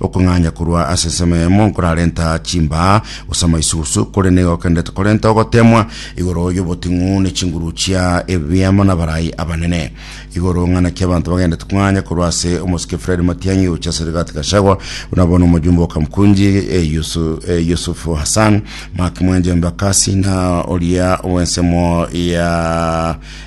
Okong'anya korwa ase ensemo eyemo nkorarenta chimbaa gose amaisugusu, korende nigo okenderete korenta ogoteemwa igoro y'oboting'u ne chinguru chia ebibe amo n'abarai abanene. Igoro ng'a naki abanto bagenderete kong'anya korwa ase omosike Fred Matiang'i gochia ase Rigathi Gachagua, buna bono omojumbe o Kamkunji eh, Yusu- eh, Yusufu Hassan, Mark Mwenje Embakasi na oria bw'ensemo ya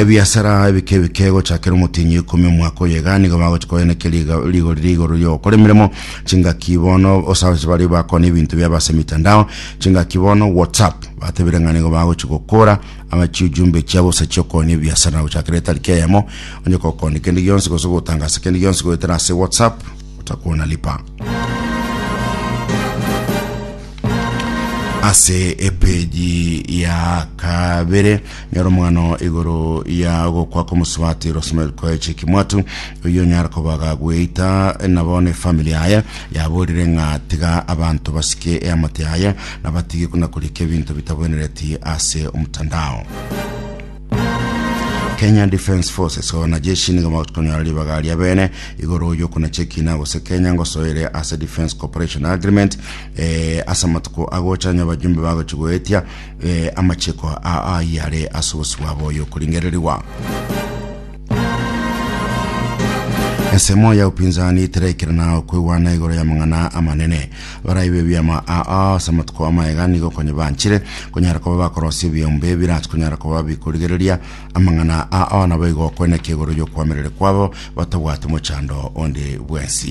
ebiasara ebike ebike gochakera omotienyi ikomi omwaka oyo iga nigo bagochi koeneke rigori rigoro riogokora emeremo chingaki bono osaosi bari bakona ebinto bia base mitandao chingaki bono whatsapp batebire ng'a nigo bagochi gokora ama chiujumbe chiabo gose chiokonia ebiasara gochakera etariki eyemo onye gokonia kende gionsi gose gotangasa kende gionsi goetera ase whatsapp Otakuwa na lipa. ase epeji ya kabere nyora omwano igoro ya gokwa komosubati rosemel koeche kimwatu oyo nyara kobaga gweita nabo ne family yaye yaborire ng'a tiga abanto basike eamate yaye nabatige kuna kurika ebinto bitabwenereti ase omtandao Kenya Defence Forces ona jeshi nigo bagokonyora ribaga ria bene igoro yokuna chekina gose Kenya ngosoere ase Defence Cooperation Agreement eh, ase amatuko agocha nyo abajumbe bagochi goetia eh, amachiko a ayare ase obosibwa bwa oyo okoringererigwa Ensemo ya upinzani tiraikera na okwegwana igoro y'amang'ana amanene baraibe ebiama aa ase amatuko amaega nigo konya banchire konyara koba bakorosia ebiombe birasi konyara koba bikorigereria amang'ana aa nabo igo okweneka igoro y'okwamerere kwabo batabwati mochando onde bwensi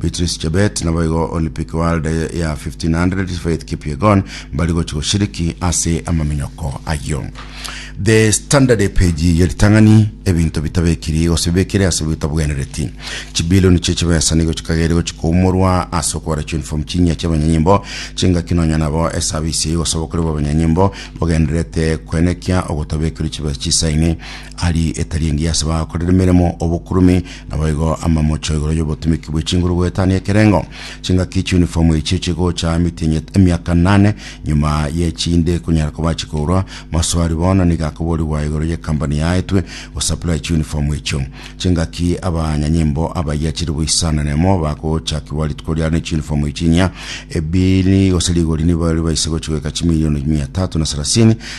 Beatrice Chebet naboigo Olympic World ya 1500 Faith Kipyegon mbari gochi goshiriki ase amaminyoko ayio. The Standard page ya ritang'ani ebinto bitabekiri gose bibekire ase bitabwenereti chibilioni chie chibesa nigo chikagere gochi koumorwa ase okobara uniform chinyia chia abanyanyimbo chingaki nonya nabo esabisi eye gosaba okore bwa abanyanyimbo bogendererete kwenekia ogotabekiri chibesa chisaini Aria etari engiya ase bakorera emeremo obokurume, naboigo amamocho igoro y'obotumiki bwe chinguru goetania ekerengo. Chingaki chiuniform echio chigocha mitinyet emiaka nane nyuma ye chinde konyara koba chikourwa. Maswali bono nigo akoborigwa igoro ye company yaetwe go supply chiuniform echio. Chingaki abanyanyimbo abayia chiri boisana nemo bagochakigwa rituko riaro ne chiuniform echi inyia. Ebiri gose rigori nibaria baise gochi goika chimilioni mia tatu na sarasini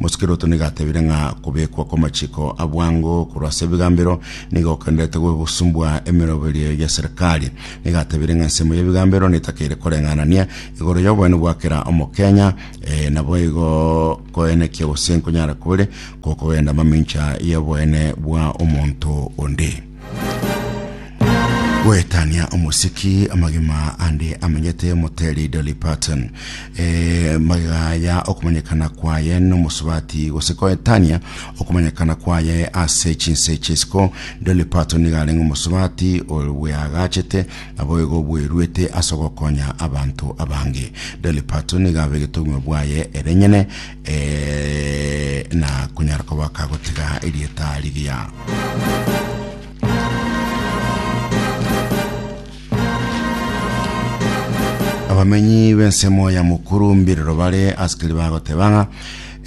Mosikeloto nigo atebire ng'a kobekwa kw'amachiko a bwango korwa ase ebigambero nigo gokenderete gosumbwa emeroberio ya serikali. Nigo atebire ng'a ensemo y'ebigambero netakeire koreng'anania igoro y'oboene bwa kera Omokenya, eh, naboigo koenekia gose nkonyara kore gokogenda mamincha y'oboene bwa omonto onde. gwetania omosiki amagima ande amenyete omoteri Dolly Parton e, magega ya okomanyekana kwaye nomosubati gose koetania okomanyekana kwaye ase chinse chisiko Dolly Parton niga arenge omosubati obweagachete aboigo bweruete ase ogokonya abanto abange Dolly Parton niga abegete obogima bwaye erenyene Ee, na konyara koba kagotiga erieta rigiya. abamenyi b'ensemo ya mokuru mbirero bare asikari bagoteba ng'a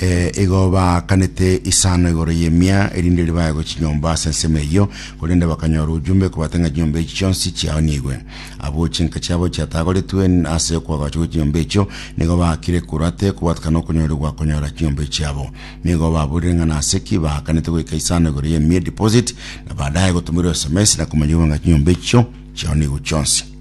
eh, igo baakanete isano igoro y'emia erinde ribaegwe chinyomba ase ensemo eyio korende bakanyora ojumbe kobate ng'a chinyomba echi chionsi chiaonigwe Abwo chinka chiabo chiatagoretwe ase okwagacha gwe chinyomba echio, nigo baakire korwa ate kobwatikana okonyorigwa konyora chinyomba echiabo. Nigo baburire ng'a nase ki baakanete goika isano igoro ye mere deposit, na baadaye gotumirwa sms na komanyigwa ng'a chinyomba echio chiao nigo chionsi.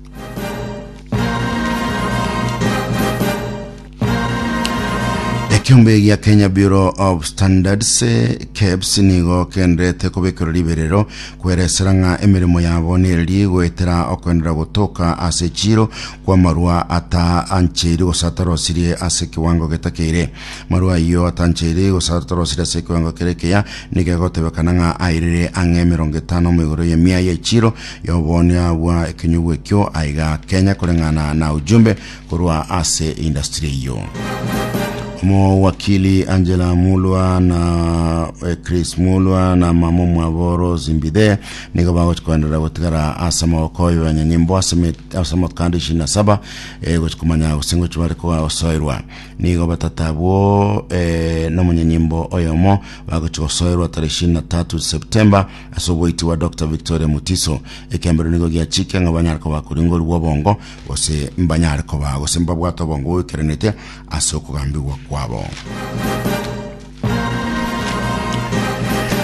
Ekiombe gia Kenya Bureau of Standards eh, KEBS nigo kenderete kobekerwa riberero kweresera ng'a emeremo yabo nereri goetera okoenderera gotoka ase chiro kwa marua ataancheiri gosatorosirie ase kiwango getakeire. Marua ayio atancheiri gosatorosirie ase kiwango kere keya nikegotebekana ng'a airire ang'e emerongo etano mo igoro y'emia ye chiro y'oboonio bwa ekenyugwa ekio aiga Kenya koreng'ana na ujumbe korwa ase industry eyio. Omowakili Angela Mulwa na eh, Chris Mulwa na mama omwabo Rose Mbithe nigo bagochi koenderera gotigara ase amaboko oyo ya nyanyimbo ase met- ase amakanda ishirini na saba eh, gochi komanya gose ngochi bare kosoerwa nigo batata abwo eh, nomonyanyimbo oyomo bagochi gosoerwa tarehe ishirini na tatu Septemba ase oboiti bwa Dr Victoria Mutiso ekembero nigo giachike ng'a banyare koba koringorigwa obongo gose mbanyare koba gose mbabwate obongo oikeranete ase okogambigwa kwabo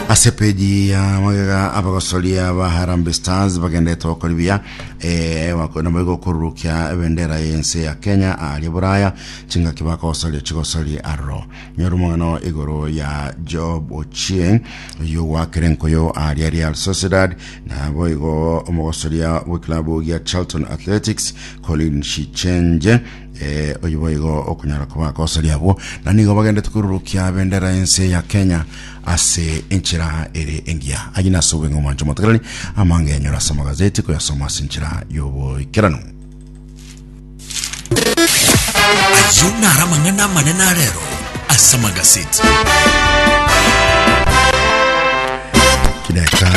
ase peji ya magega abagosoria ba Harambee Stars bagendete gokora buya eh, bako- nabo igokururukia ebendera y'ense ya Kenya aria Buraya chingaki bakogosoria chigosori aroro nyora omong'ano igoro ya Job Ochieng oyogwakire nkoyo aria Real Sociedad Naboigo omogosoria bw'ekilabu gia Charlton Athletics Colin Shichenje eh, oyo boigo okonyara koba akosoria abwo na nigo bagendete korurukia bendera ense ya Kenya ase enchera ere engiya ayi nase obweng'e omonche omotegereri amange enyora ase amagazeti koyasoma ase enchera y'oboikeranu Ayio naro amang'ana amanene a rero ase amagaseti. chideka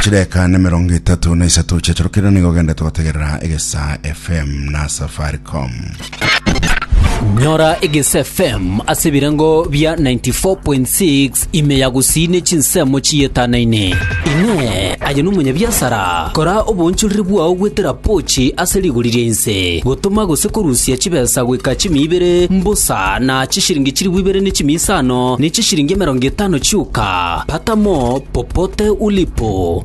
chideka na mirongo itatu na isato chiachorokire nigo gende twategerera egesa fm na safaricom nyora egese fm ase ebirengo bia 94.6 Ime ya gusii ne chinsemo chiyetanane. Inee! Aye nomonyabiasara? Kora oboonchoreri bwao gwetera pochi ase rigori ria inse, gotoma gose korusia chibesa goika chimia ibere mbosa na chishiringi chilifu ibere ne chimia isano ne chishiringi emerongo etano chioka? Patamo popote ulipo.